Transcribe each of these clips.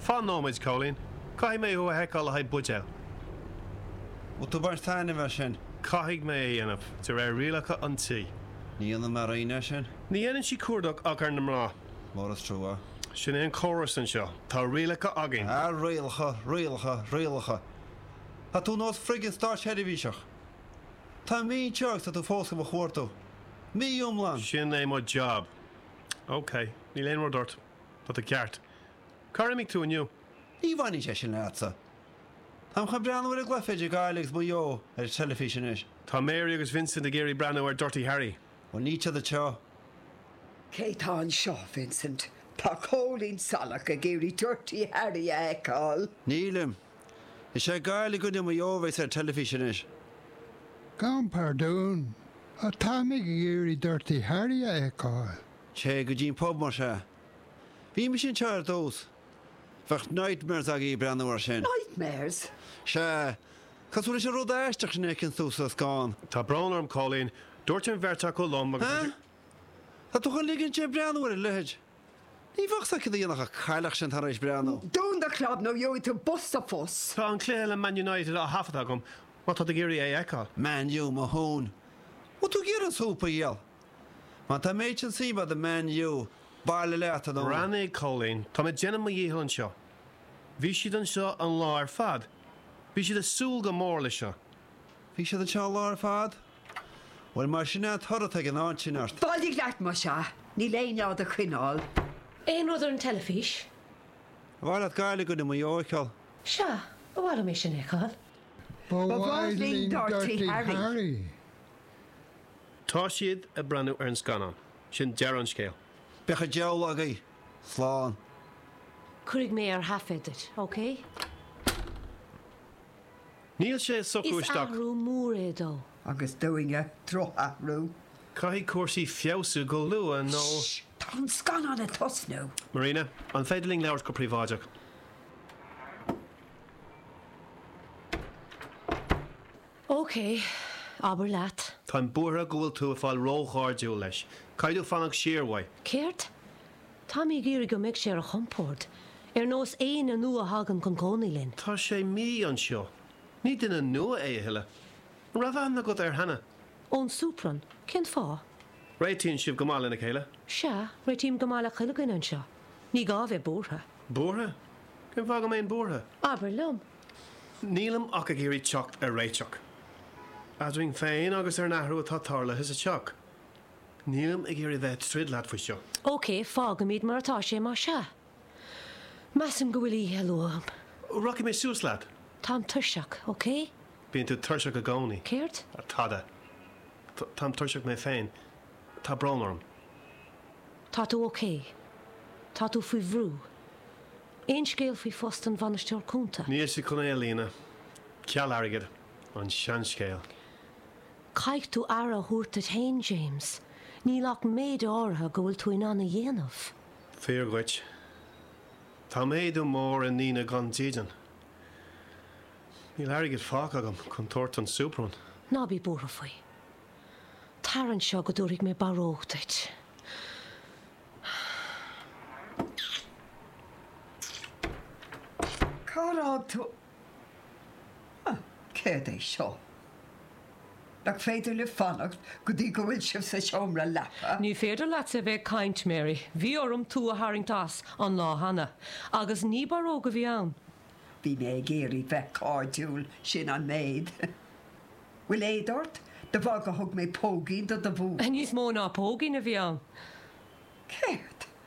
Fan nóiméad, Cóilín. Caithfidh mé thú a sheiceáil le haghaidh buidéal. Bhfuil tú baint taitneamh as sin? Caithfidh mé é dhéanamh, de réir rialacha an tí. Ní dhéanann mé rian as sin. Ní dhéanann sí cuardach ach ar na mná. Mór is trua. Sin é an córas anseo. Tá rialacha againn. Ah, rialacha, rialacha, rialacha. Tá tú nós friggin stáitsheirbhíseach. Tá mé mí anseo agus tá tú fós do mo chuartú. Mí iomlán! Sin é mo jab. OK. Níl aon rud ort. Tá tú ceart. Cár imigh tú inniu? Ní bhaineann sé sin leatsa. Táim chun breathnú ar an gcluiche idir Gaillimh agus Maigh Eo ar an teilifís anois. Tá Mary agus Vincent ag iarraidh breathnú ar Dirty Harry. Bhuel, níl tada anseo. Cé tá anseo, Vincent? Tá Cóilín Salach ag iarraidh Dirty Harry a fheiceáil. Nílim. Is é Gaillimh i gcoinne Maigh Eo a bheas ar teilifís anois. Gan pardún, táimid ag iarraidh Dirty Harry a fheiceáil. Téigh go dtí an pub más ea. Bhí mise anseo ar dtús. Bheadh nightmares agaibh breathnú air sin. Nightmares? Sea. Cosúil leis an rud aisteach sin a fheiceann tú sa scáthán? Tá brón orm, Cóilín. Dúirt an bheirt acu liom agus. Huh? Tá tú chun ligint di breathnú ar a leithéid? Ní bheadh a fhios a'd céard a dhéanfadh an chailleach sin tar éis breathnú. Dún do chlab nó gheobhaidh tú bos sa bpus. Tá an cluiche le Man United á thaifeadadh agam má tá tú ag iarraidh é a fheiceáil. Man U, mo thóin! Bhfuil tú ag iarraidh an súp a dhíol? Má tá méid sin suime a'd i Man U, bailigh leat, a Dhún. Breathnaigh, Cóilín, táim ag déanamh mo dhícheall anseo. Bhí siad anseo an lá ar fad. Bhí siad ag súil go mór leis seo. Bhí siad anseo an lá ar fad. Bhuel, b'in é an toradh atá ag an áit sin ort. Bailigh leat, más ea. Níl éinne á do choinneáil. Aon rud ar an teilifís? Ar mhaith leat Gaillimh agus Maigh Eo a fheiceáil? Sea, ba mhaith liom é sin a fheiceáil. Ba mhaith linn Dirty Harry. Tá siad ag breathnú ar an scannán. Sin deireadh an scéil. Beidh an diabhal agaibh! Slán. Cuirfidh mé ar thaifead duit, OK? Níl sé ag socrú isteach. Is athrú mór é dó. Agus dúinne, droch-athrú. Caithfidh cúrsaí feabhsú go luath nó. Tá an scannán ag tosnú. Marina, an féidir linn labhairt go príobháideach? OK, abair leat. Táim buartha go bhfuil tú ag fáil róchairdiúil leis. Caithfidh tú fanacht siar uaidh. Céard? Táimid ag iarraidh go mbeidh sé ar a chompord, ar nós éinne nua a thagann chun cónaí linn. Tá sé mí anseo. Ní duine nua é a thuilleadh. An raibh aithne agat air cheana? Ón Suprainn. Cén fáth? Réitíonn sibh go maith lena chéile? Sea, réitím go maith le chuile dhuine anseo. Ní gá a bheith buartha. Buartha? Cén fáth go mbeinn buartha? Abair liom. Nílim ach ag iarraidh teacht ar réiteach. Eadrainn féin agus ar an athrú atá tarlaithe sa teach. Nílim ag iarraidh bheith ag troid leat faoi seo. OK, fágfaimid mar atá sé, má sea. Measaim go mbeidh oíche luath agam. Rachaidh mé suas leat. Táim tuirseach, OK? Bíonn tú tuirseach i gcónaí. Céard? Tada. Táim tuirseach mé féin. Tá brón orm. Tá tú OK. Tá tú faoi bhrú. Aon scéal faoi phost an Bhainisteora Cúnta? Níl siad chun é a líonadh. Ceal airgid. An seanscéal. Caithfidh tú aire a thabhairt duit féin, James. Níl ach méid áirithe go bhfuil tú in ann a dhéanamh. Fíor dhuit. Tá méadú mór i ndaoine gan dídean. Níl airgead fágtha agam chun tabhairt don Superman. Ná bí buartha faoi. Tar anseo go dtabharfaidh mé barróg duit. Cár fhág tú Ah, céard é seo? Nach féidir libh fanacht go dtí go bhfuil sibh sa seomra leapa? Ní féidir leatsa a bheith ag caint, Mary. Bhí orm tú a tharraingt as, an lá cheana. Agus ní barróg a bhí ann. Bhí mé ag iarraidh bheith cairdiúil, sin an méid. Bhfuil éad ort? De bharr gur thug mé póigín do do bhú. Níos mó ná póigín a bhí ann. Céard?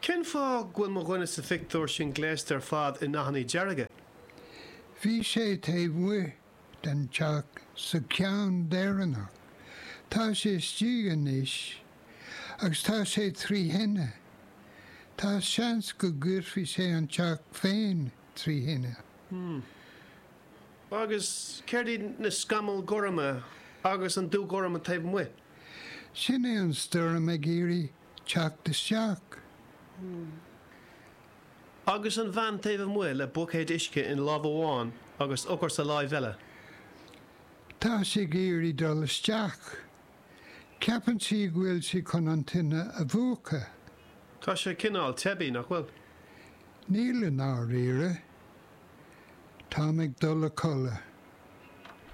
Cén fáth go bhfuil mo dhuine sa phictiúr sin gléasta ar fad in dathanna dearga? Bhí sé taobh amuigh den teach sa cheann deireanach. Tá sé istigh anois agus tá sé trí thine. Tá seans go gcuirfidh sé an teach féin trí thine. Agus céard iad na scamaill ghorma agus an dúghorm taobh amuigh? Sin é an stoirm ag iarraidh teacht isteach. Agus an bhean taobh amuigh le buicéad uisce i láimh amháin agus eochair sa láimh eile. Tá sí ag iarraidh dul isteach. Ceapann sí go bhfuil sí chun an tine a mhúchadh. Tá sé cineál teibí, nach bhfuil? Níl i ndáiríre. Táim ag dul a codladh.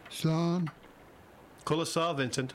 Slán. Codladh sámh, Vincent.